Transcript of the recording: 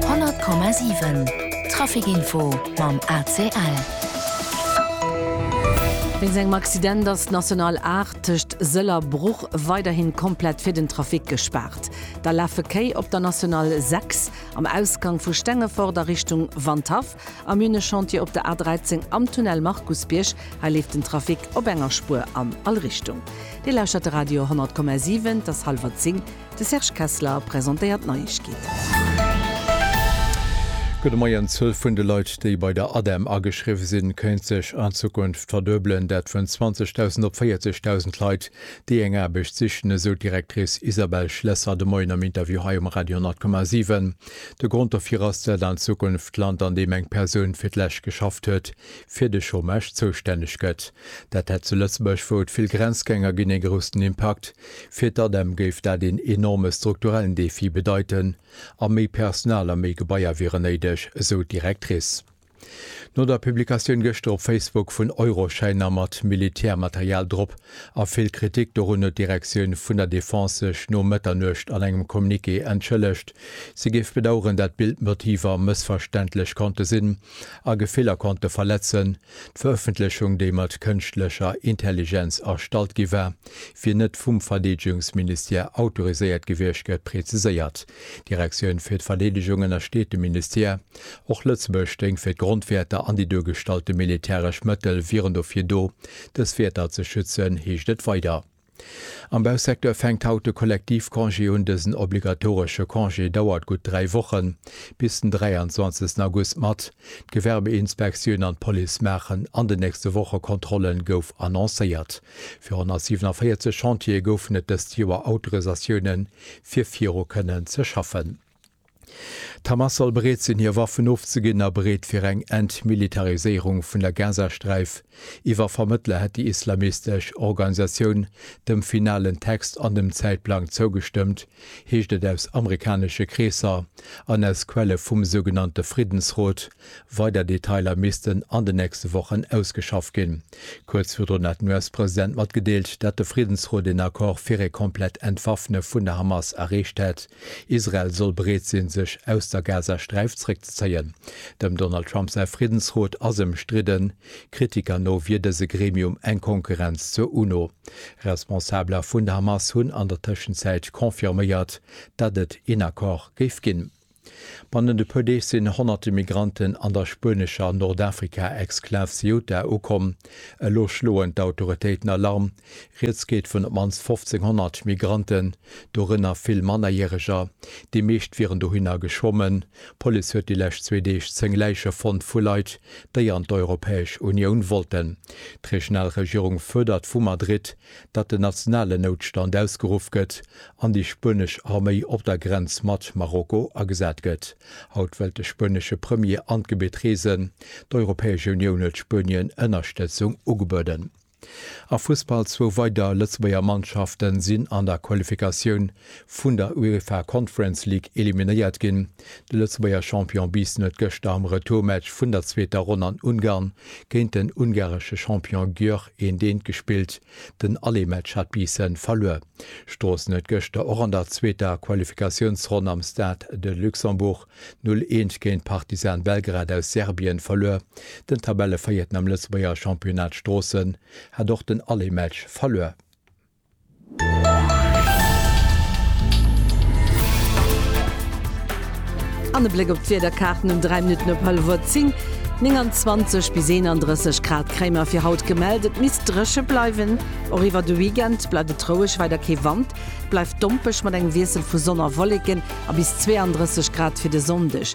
100,7 Trafic Info mam ACL. Wéinst engem Accident ass d'National 8 tëscht Sëll a Bruch weiderhi komplett fir den Trafic gespaart. Da lafe Kéi op der National 6 am Ausgank vu Stengefort a Richtung Wandhaff, am Minechantier op der A13 am Tunnel Markusbierg. Hei leeft den Trafic op enger Spuer an all Richtung. Dir lauschtert de Radio 100,7, et ass hallwer 10. De Serge Kessler presentéiert d'Neiegkeeten. Gudde Moien. D'Zuel vun de Leit, déi bei der ADEM ageschriwwe sinn, kéint sech an Zukunft verduebelen. Dat vun 20.000 op 40.000 Leit, déi eng Aarbecht sichen, esou d'Directrice Isabelle Schlesser de Moien am Interview hei um Radio 100,7. De Grond dofir ass, dat an Zukunft d'Land, an deem eng Persoun fir d'lescht geschafft huet, fir de Chômage zoustänneg gëtt. Dat hätt zu Lëtzebuerg, wou et vill Grenzgänger ginn, ee groussen Impakt. Fir d'ADEM géif dat een enorme strukturellen Defi bedeiten a méi Personal a méi Gebaier wieren néideg, esou d'Directrice. No der Publikatioun gëschter op Facebook vun Euroschäiner mat Militärmaterial drop a vill Kritik dorun huet d'Direktioun vun der Defense sech no Mëtternuecht an engem Communiqué entschëllegt. Si géif bedaueren, dat Bildmotiver mëssverständlech konnte sinn a Gefiller konnte verletzen. D'Verëffentlechung, déi mat kënschtlecher Intelligenz erstallt gi war, wier net vum Verdeedegungsministère autoriséiert gewiescht, gëtt preziséiert. D'Direktioun fir d'Verdeedegung ënnersteet dem Ministère. Och Lëtzebuerg stéing fir d'Grondwäerter an déi duergestallte militäresch Mëttel wieren dofir do, dës Wäerter ze schützen, heescht et weider. Am Bausecteur fänkt haut de Kollektivcongé un. Dësen obligatoresche Congé dauert gutt dräi Wochen, bis den 23 August mat. D'Gewerbeinspektioun an d'Police maachen an den nächste Woche Kontrollen, gouf annoncéiert. Fir 147 Chantiere goufen et dëst Joer Autorisatioune fir viru kënnen ze schaffen. D'Hamas soll bereet sinn, hir Waffen ofzeginn a bereet fir eng Entmilitariséierung vun der Gazasträif. Iwwer Vermëttler hätt déi islamistesch Organisatioun dem finalen Text an dem Zäitplang zougestëmmt, heescht et aus amerikanesche Kreesser an aus Quelle vum sougenannte Friddensrot, Weider Detailer missten an den nächste Wochen ausgeschafft ginn. Kuerz virdrun hat den US-President matgedeelt, datt de Friddensrot een Accord fir ee komplett Entwaffne vun der Hamas erreecht hätt. Israel soll bereet sinn, sech aus der Gazasträif zréckzezéien. Dem Donald Trump säi Friddensrot ass ëmstridden. Kritiker no wier dëse Gremium eng Konkurrenz zur UNO. Responsabeler vun der Hamas hunn an der Tëschenzäit confirméiert, datt et een Accord géif ginn. Bannent e puer Deeg sinn honnerte Migranten an der spuenescher Nordafrika-Exklav Ceuta ukomm. Elo schloen d'Autoritéiten Alarm. Rieds geet vun op d'mannst 1.500 Migranten, dorënner vill Mannerjäreger. Déi meescht wieren dohinner geschwommen. D'Police huet déi lescht zwee Deeg zéng Läiche fonnt vu Leit, déi an d'Europäesch Unioun wollten. D'regional Regierung fuerdert vu Madrid, datt en nationalen Noutstand ausgeruff gëtt an déi spuenesch Arméi op der Grenz mat Marokko agesat gëtt. Haut wëllt de spuenesche Premier an d'Gebitt reesen. D'Europäesch Unioun huet Spuenien Ënnerstëtzung ugebueden. A Fussball, Zwou weider Lëtzebuerger Mannschafte sinn an der Qualifikatioun vun der UEFA Conference League eliminéiert ginn. De Lëtzebuerger Champion Biissen huet gëschter am Retourmatch vun der zweeter Ronn an Ungarn géint den ungaresche Champion Győr Een deen gespillt, den alle Match hat Biissen verluer. Stroossen huet gëschter och an der zweeter Qualifikatiounsronn am Stade de Luxembourg 0 Eent géint Partizan Belgrad aus Serbien verluer. Den Tabelleveiierten am Lëtzebuerger Championnat Stroossen hat och den alle Match verluer. An e Bléck op d'Wiederkaarten um 3 Minutten op hallef uer 10, 29 bis 31 Grad kréie mer fir haut gemellt. Et misst dréche bleiwen, och iwwer de Weekend bleift et roueg, weider kee Wand. Et bleift dompeg mat engem Wiessel vu Sonn a Wolleken a bis 32 Grad fir de Sonndeg.